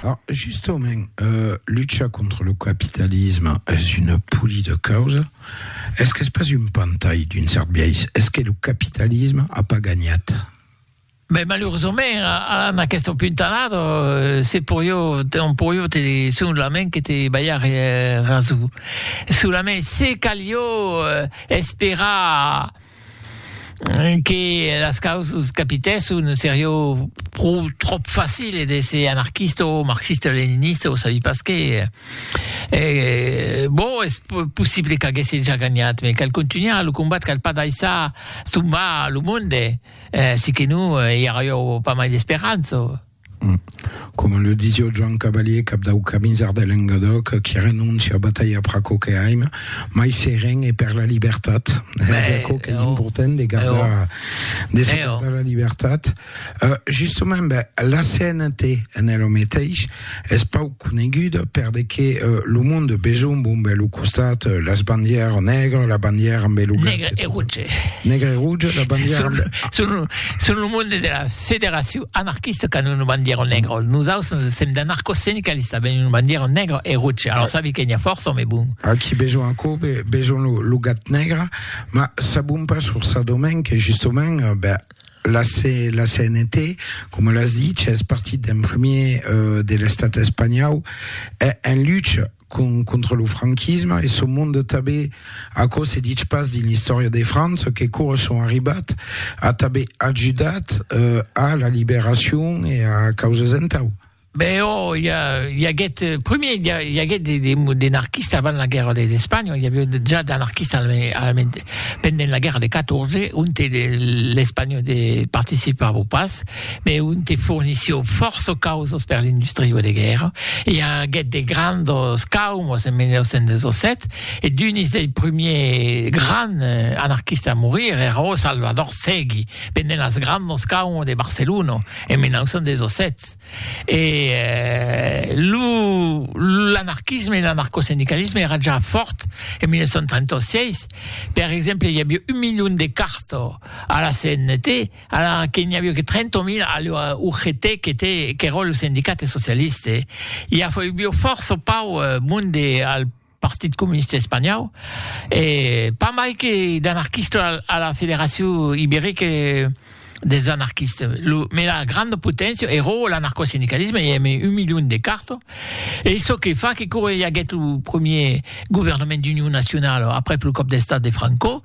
Ah, justament, euh, lucha contra lo capitalisme es una poli de causa, es qu'es pas un pantai d'un cèrt biais, es que lo capitalisme a pas ganhat. Ben malurosament a a an aquesta puntalada euh se poió te on poió te sonlament que te balhar eh raso. Solament se calió eh esperar que las causas capitèsson serió pro tròp facile d'èsser anarquista o marxista-leninista o sabi pas qué, e bon es possible qu'aguèsse ja ganhat me cal contunhar lo combat cal pas daissar tombar lo monde, si que non i arrió pas mai d'esperança. Coma le disio Joan Cavalier, cap dau Caminzar de Lengadòc, qui renóncia batalhar per aquò que aim, mai seren e per la libertat. Es aquò qu'es important de gardar, de se gardar la libertat. Justament, la CNT en ela meteis es pauc. coneguda per de que lo monde besonh bombe lo costat las bandièr nègre la bandièr amb lo nègre e rouge nègre e rouge la bandièr amb... son, son lo monde de la federacion anarquista qu'an una bandièr nègre nos aus sèm d'anarcosindicalista ben una bandièr nègre e rouge alors sabi que n'ia fòrça mai bon aquí besonh aquò besonh lo, lo gat nègre mas sabon pas sur sa domaine que justament ben La CNT, coma l'as dich, es partit d'en premier de l'estat espanhau en lucha contra lo franquisme e son monde tanben. Aquò se dich pas dins l'istòria de França que cora son arribat a tanben ajudat a la liberacion e a causas entau. Ben oh, il y, a, il y aguèt, euh, premier, il y, a, il y aguèt des, des, des anarquistes avant la guerre d'Espagne, il y avait déjà d'anarquistes pendant la guerre de 14, on te l'Espagne de participava au pas, mais on te fournissió force causes per l'industrie de guerre, il y aguèt des grands caumos en 1917, et d'un des premiers grands euh, anarquistes à mourir era oh, Salvador Segui, pendant las grandes caumos de Barcelona en 1917. Stat e lo l'anarquisme e l'anarcosindicalisme èra ja fòrt en 1936, per exemple i aviá un milion de carta a la CNT ala que n'i aviá que 30.000 a la UGT qu'était qu'èra lo sindicat socialiste, i aviá fòrça pauc monde al Partit Comunista Espanhau, e pas mai que d'anarquista a la Federacion Iberica dels Anarquistes, lo mela granda poténcia e ròu l'anarcosindicalisme, i ème un milion de carto, ei çò que fa que quora i aguèt lo premier governament d'union nacionala aprèp lo còp d'estat de Franco,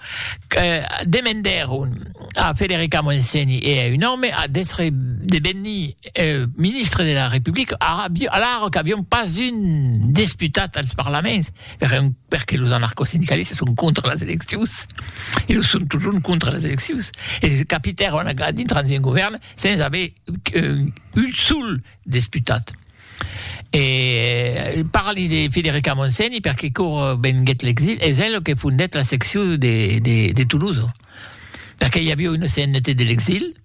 demendèron a Federica Montseny e a un òme d'èstre de venir ministre de la Republica, ara aviu, alara qu'aviam pas un desputat als parlaments, per un, perque los anarcosindicalistas son contra las eleccions, e los son totjorn contra las eleccions, e se capitèron a dintra dins un govèrn sens aver un, un sol desputat. E parli de Federica Montseny perque quora venguèt l'exil, es ela que fondèt la seccion de, de, de Toulouse, perque i aviu una CNT de l'exil,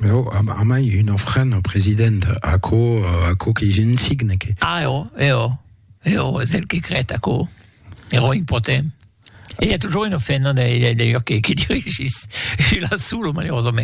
Mais oh, am, amai un ofrent au president, aquò, aquò que je ne signe que. Ah, eo, eo, eo, és el que crèt aquò, ero impotent. E i a toujours un ofrent, non, d'ailleurs, que, que dirigís, e la solo, malerosament.